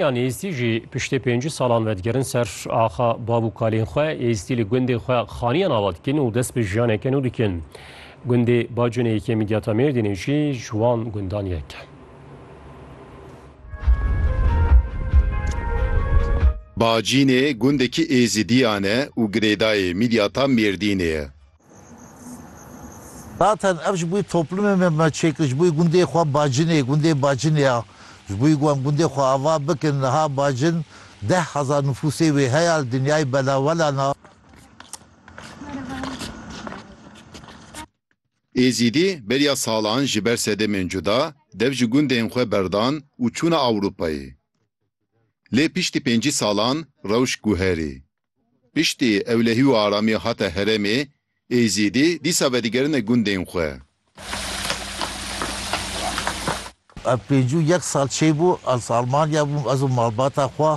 Yan êzîdî jî piştê pêncî salan ve digerin ser axa bav û kalên xwe. Êzîdî li gundê xwe xaniyan ava dikin û dest bi jiyaneke nû dikin. Gundê Baconê yekê Midyata Mêrdînê jî ji wan gundan yek e. Bacinê gundekî êzîdîyan e û girêdayê Midyata Mêrdînê ye. Zaten ev ji bo toplumê me me çêkir ji bo gundê xwe Bacinê, gundê Bacinê ya. Ji bo ku em gundê xwe ava bikin niha Bacin deh hezar nifûsê wê heye li dinyayê belawelan a. Êzidî beriya salan ji ber sedemên cuda dev ji gundên xwe berdan û çûne Ewropayê. Lê piştî pêncî salan rewş guherî. Piştî ewlehî û aramî hate herêmê, Êzîdî dîsa vedigerine gundên xwe. Ev pêncî û yek sal çê bû ez Almanya bûm, ez û malbata xwe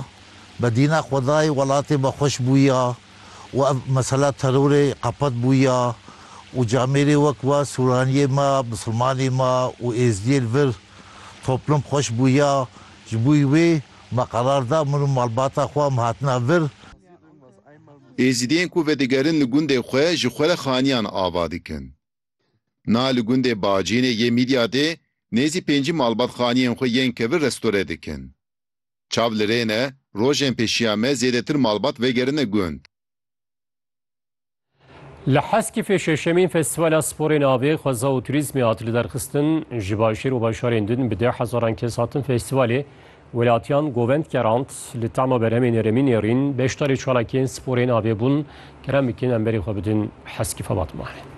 bi dîna xwedayê welatê me xweş bûya û ev mesela terorê qepet bûya û camêrê wek we sûraniyê me, misilmanê me û êzdiyê li vir toplum xweş bûya ji bo wê Me qerar da min û malbata xwe em hatina vir. Êzidiyên ku vedigerin li gundê xwe ji xwe re xaniyan ava dikin. Na li gundê Bacînê yê Mîdyadê nêzî pêncî malbat xaniyên xwe yên kevir restore dikin. Çav li rê ne, rojên pêşiya me zêdetir malbat vegerine gund. Li Heskîfê şeşemîn Festîvala Sporê Navê, Xweza û Turîzmê hat liderxistin. Ji başêr û bajarên din bi deh hezaran kes hatin festîvalê. Welatiyan govend kerand, li tema berhemên herêmî nêrîn, beşdarî çalakiyên sporê navê bûn. Kerem bikin em berê xwe bidin Heskîfa Batmanê.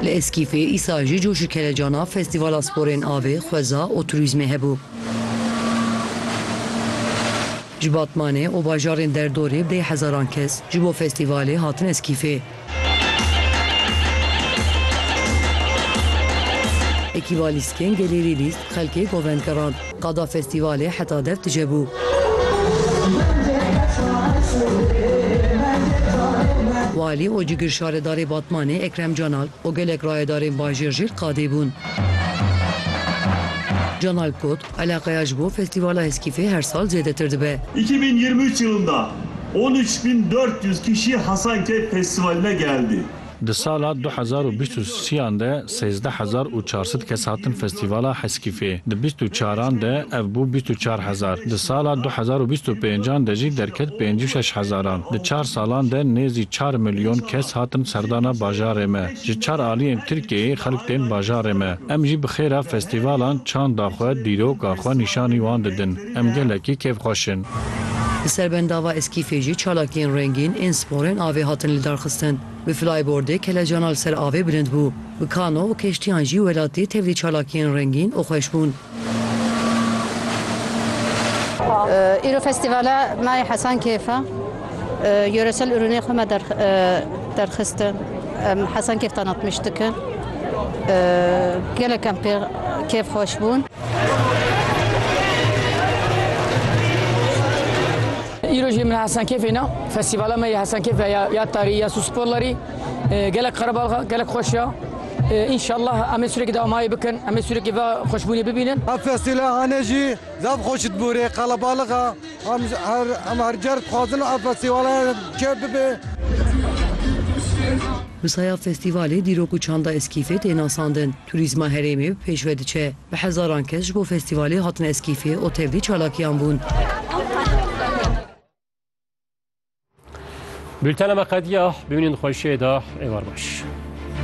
Li Eskîfê îsal jî coş û kelecana Festîvala Sporên Avê, Xweza û Turîzmê hebû. Ji Batmanê û bajarên derdorê bê hezaran kes ji bo festîvalê hatin Eskîfê. Ekîba Lîskên Gelê Lê Lîsk xelkê govend gerand. Qada festîvalê heta dev tije bû. Walî û cigirşaredarê Batmanê Ekrem Canalp û gelek rayedarên bajêr jî li qadê bûn. Canalp got, Eleqeya ji bo Festîvala Heskîfê her sal zêdetir dibe. Îki bin yirmi üç yilında on üç bin dört yüz kişi Hasankeyf Festivaline geldi. Di sala du hezar û bîst û sî-yan de sêzdeh hezar û çar sed kes hatin Festîvala Heskîfê. Di bîst û çaran de ev bû bîst û çar hezar. Di sala du hezar û bîst û pêncan de jî derket pêncî û şeş hezaran. Di çar salan de nêzî çar milyon kes hatin serdana bajarê me. Ji çar aliyên Tirkiyeyê xelk tên bajarê me. Em jî bi xêra festîvalan çanda xwe, dîroka xwe nîşanî wan didin. Em gelekî kêfxweş in. Li ser bendava Eskîfê jî çalakiyên rengîn ên sporên avê hatin lidarxistin. Bi flaybordê kelecana li ser avê bilind bû. Bi kano û keştiyan jî welatî tevlî çalakiyên rengîn û xweş bûn. Îro festîvala me yê Hesan Kêf e. Yoresel ürûnê xwe me derxistin. Em Hesan Kêf tanatmîş dikin. Gelek em pê kêf xweş bûn. Îro jî min Hesan Kêfê na. Festîvala me yê Hesan Kêf e ya tarî ya sûsporlarî. Gelek qerebalxe, gelek xweş e. Înşallah em ê sûrekî damayî bikin, em ê sûrekî va xweşbûnê bibînin. Ev festîla hane jî zaf xweş dibûrê, qelebalix e. Em her car dixwazin ev festîvala çêk bibe. Bi saya festîvalê dîrok û çanda Eskîfê tê nasandin, turîzma herêmê bi pêş ve diçe. Bi hezaran kes ji bo festîvalê hatin Eskîfê û tevlî çalakiyan bûn. Bultena me qediya, bimînin xweşiyê de, êvar baş.